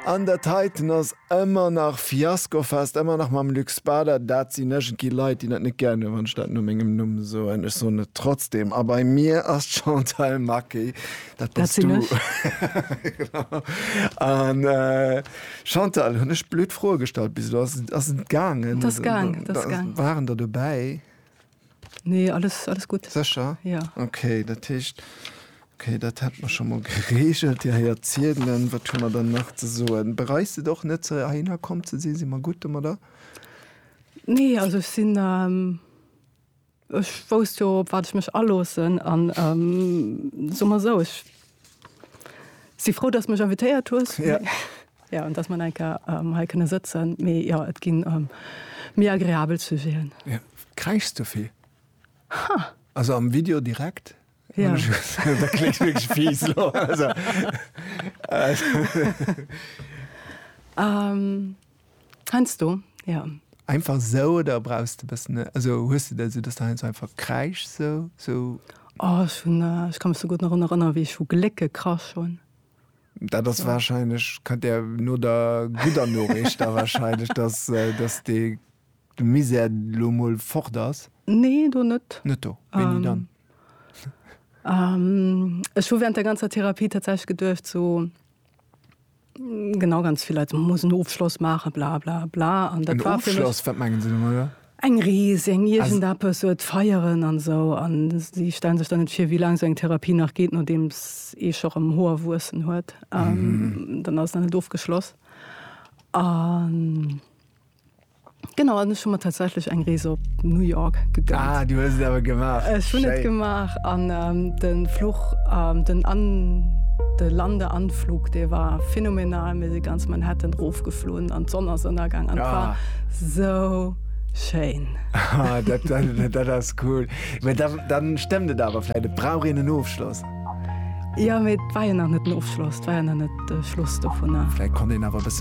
An der Titan ass ëmmer nach Fiaskofest, ëmmer nach mam Luc Spader. Dat sinn iergendwéi Leit, déi dat net gär hunn, wann ech dat no mengem Numm soen. Ech soen et trotzdeem. A bei mir ass d'Chantal Maqué. Dat bass du. Dat sinn ech. An Chantal, hunn ech blöd Froe gestallt bis elo? Ass et gaangen? Et ass gaangen. Waren der dobäi? Nee, alles, alles gutt. Sécher? Ja. Okay, dat heescht, okay, dat hätte mer scho mol geregelt. Dir héiert ziedelen. Wat hu mer dann nach ze soen? Bereist et och net, ze heihinner komm ze sinn? Si mer gutt domadder? Nee, also ech sinn, ähm, ech wousst jo, op wat ech mech aloossen. An ähm, soe mer esou, ech si frou, dass du mech invitéiert hues. Ja. Jo, dass mer eng Kéier hei kënne sëtzen. Mee jo, et ginn méi agreabel Sujeten. Jo. Kräischs du vill? Ha! Also am Video direkt? Jo. Dat kléngt wierklech fies elo. Heiansdo, jo. Einfach esou oder brauchs de e bëssen, also hues de dat esou, dass de heiansdo einfach kräischs esou? Esou. Oh, ech hunn, ech ka mech esou gutt nach erun erënneren, wéi ech vu Gléck gekrasch hunn. Dat ass wahrscheinlech, kënnt Där no der gudder Noriicht da wahrscheinlech, dass, dass dee, de Misär elo emol fort ass? Nee, do net. Net do? Wéini dann? Ech hu während der ganzer Therapie tatsächlech geduecht, so, genau, ganz vill Leit soen, muss en Ofschloss maachen, bla bla bla. An dat war fir mech. En Ofschloss? Wat mengen se domadder? Eng Rees, eng iergendeppes, et feieren an esou. An si stellen sech dann net vir, wéi laang esou eng Therapie nach geet, nodeems ee scho rëm Hoer wuessen huet. Dann ass et nach net ofgeschloss. An genau, an ech hu mer tatsächlech eng Rees op New York gegönnt. Ah, du hues et awer gemaach. Ech hunn et gemaach an de Fluch, den An, de Lande-Anflug, dee war phänomenal. Mir si ganz Manhattan rofgeflunn an d'Sonn ass ënnergaang an et war. Sou schéin. Ah, dat, dat, dat ass cool. Mee da, dann stëmmt et awer vläit, et brauch een en Ofschloss. Jo, mee et war jo nach net den Ofschloss, et war jo nach net de Schluss dovunner. Vläit konnt een awer e bësse.